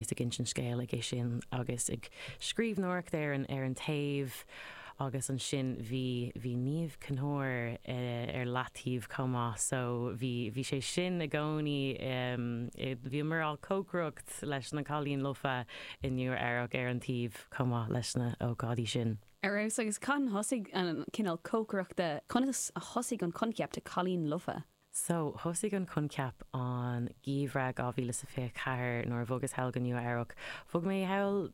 is ag insint an scéil aige sin agus ag scríbhneoireacht ar an ar an taobh agus ansin bhí bhí Niamh Chinn Thóir ar leataobh chomh maith so bhí bhí sé sin i gcónaí i bhíomar ag cócaireacht leis na Cailíní Lofa i Nua Eabhrac ar an taobh chomh maith leis na ócáidí sin. Ar fheabhas agus cathain thosaigh an cineál cócaireachta conas a thosaigh an coincheap de Cailíní Lofa? So, thosaigh an coincheap an geimhreadh 2024 nuair a bhogas thall go Nua Eabhrac. Bhog mé thall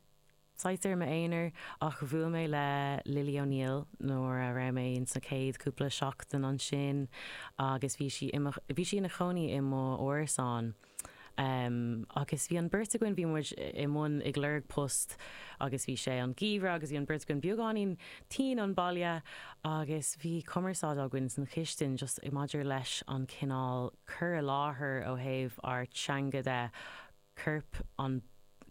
saghas ar m'aonar ach bhuail mé le Lily O'Neill nuair a raibh mé ins na céad cúpla seachtain ansin agus bhí sí i mo, bhí sí ina chónaí i m'árasán. Agus bhí an bheirt againn, bhí muid i mbun ag lorg post agus bhí sé an geimhreadh agus bhí an bheirt againn beagáinín tinn don bhaile agus bhí cumarsáid againn san chistin just i maidir leis an cineál cur i láthair ó thaobh ár teanga de, coirp an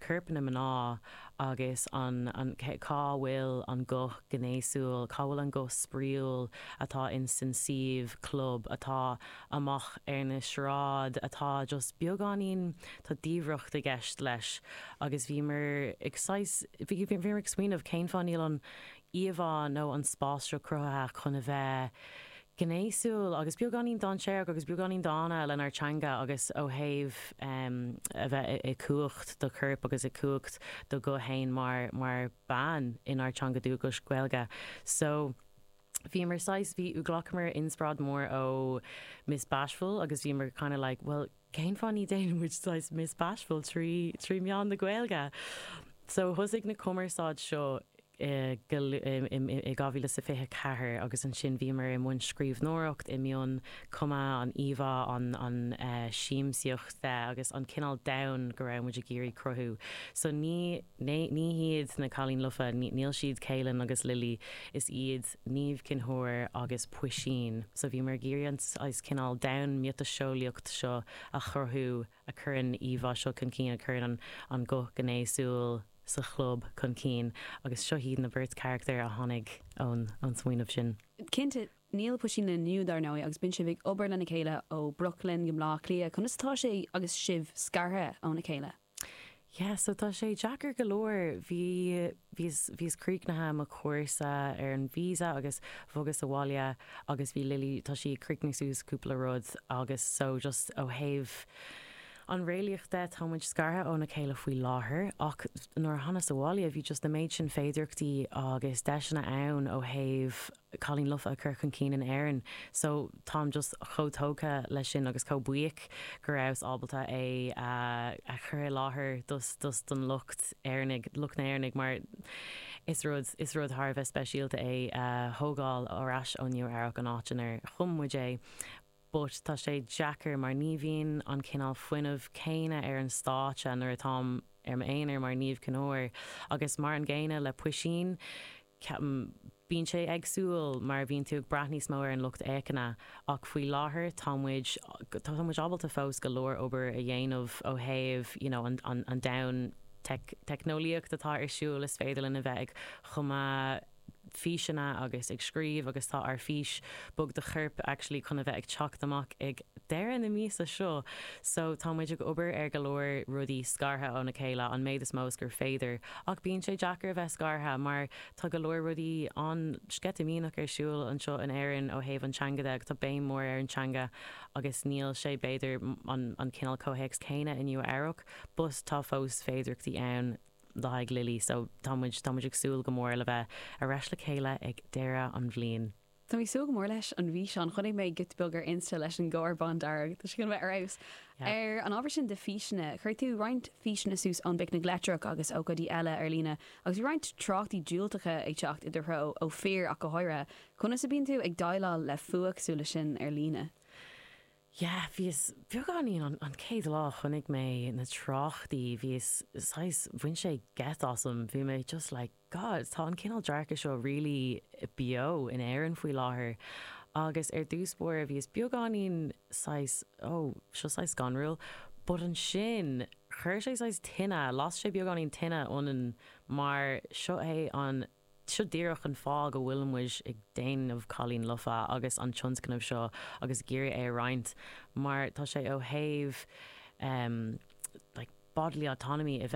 coirpeanna mná agus an cá bhfuil an guth gnéasúil, cá bhfuil an guth spraíúil atá insan suíomh club atá amach ar na sráid atá just beagáinín tá diamhracht i gceist leis agus bhíomar ag saghas bhíomar ag smaoineamh cén fáth níl an íomhá nó an spás seo cruthaithe chun a bheith gnéasúil agus beagáinín dainséarach agus beagáinín dána lenár dteanga agus ó thaobh a bheith i i cumhacht do choirp agus i cumhacht do ghuth féin mar mar bean inár teanga dúchais Gaeilge so bhíomar saghas bhí uh ghlacamar inspráid mór ó Miss Bashful agus bhíomar kinda like bhuel cén fáth ní déanann muid saghas Miss Bashful trí trí meán na Gaeilge? So thosaigh na cumarsáid seo i go i 2024 agus ansin bhíomar i mbun scríbhneoireacht i mbun cumadh an íomhá an an siamsaíochta agus an cineál domhan go raibh muid ag iarraidh cruthú so ní ní hiad na Cailíní Lofa níl siad Kaylin agus Lily is iad Niamh Chinn Thóir agus Puisín. So bhíomar ag iarraidh an saghas cineál domhan miotaseolaíocht seo a chruthú a chuireann íomhá seo chun cinn, a chuireann an guth gnéasúil sa chlub chun cinn agus seo iad na beirt charachtar a tháinig ón smaoineamh sin. Cinnte, níl Puisín linn inniu dar ndóigh agus bíonn sibh ag obair lena chéile ó Brooklyn go mBleá Cliath, conas atá sé agus sibh scartha óna chéile? Yeah so tá sé deacair go leor. Bhí, bhíos, bhíos críochnaithe le mo chúrsa ar an visa agus bhogas abhaile agus bhí Lily, tá sí ag críochnú suas cúpla rud agus so just ó thaobh an réalaíocht de tá muid scartha óna chéile faoi láthair ach nuair a thánas abhaile bhí just an méid sin féidireachtaí agus deiseanna ann ó thaobh cailín lofa a chur chun cinn in Éirinn so táim just chomh tógtha leis sin agus chomh buíoch go rabhas ábalta é a chur i láthair dos don lucht Éireannaigh lucht na hÉireannaigh mar is rud is rud thar a bheith speisialta é a thógáil ar ais ó Nua Eabhrac an áit inar chum muid é. but tá sé deacair mar ní bhíonn an cineál fuinneamh céanna ar an stáitse nuair atáim ar m'aonar mar Niamh Chinn Óir agus mar an gcéanna le Puisín, ceapaim. Bíonn sé éagsúil mar bhíonn tú ag brath níos mó ar an lucht fhéachana ach faoi láthair tá muid, tá muid ábalta fós go leor obair a dhéanamh ó thaobh you know an domhan teicneolaíocht atá ar siúl is féidir linn a bheith ag cumadh, físeanna agus ag scríobh agus tá ár fís bog do choirp actually chun a bheith ag teacht amach ag deireadh na míosa seo so tá muid ag obair ar go leor rudaí scartha óna chéile an méid is mó is gur féidir ach bíonn sé deacair a bheith scartha mar tá go leor rudaí an-sceitimíneach ar siúl anseo in Éirinn ó thaobh an teanga de agus tá béim mór ar an teanga agus níl sé b'fhéidir an cineál comhthéacs céanna in Nua Eabhrac but tá fós féidireachtaí ann le haghaidh Lily so tá muid tá muid ag súil go mór le bheith ar ais le chéile ag deireadh an bhliain. Tá mé ag súil go mór leis an bhfíseán. Chonaic mé giota beag ar Insta leis an gcarr bándearg. Tá sé chun bheith ar fheabhas. Yep. Ar an ábhar sin de físeanna, chuir tú roinnt físeanna suas ón bPicnic Leictreach agus ócáidí eile ar líne agus bhí roinnt tráchtaí diúltacha ag teacht i do threo, ó fir ach go háirithe. Conas a bíonn tú ag déileáil le fuath cosúil le sin ar líne? Yeah, bhíos beagáinín an, an chéad lá a chonaic mé na tráchtaí, bhíos saghas, bhain sé geit asam, bhí mé just like God, tá an cineál dearcadh seo really beo in Éirinn faoi láthair agus ar dtús báire bhíos beagáinín saghas oh, seo saghas scanrúil but ansin chuir sé saghas tine, las sé beagáinín tine ionainn mar seo é an Seo díreach an fáth go bhfuil muid ag déanamh Cailín Lofa agus an tionscnamh seo agus ag iarraidh é a roinnt mar tá sé ó thaobh like bodily autonomy, a bheith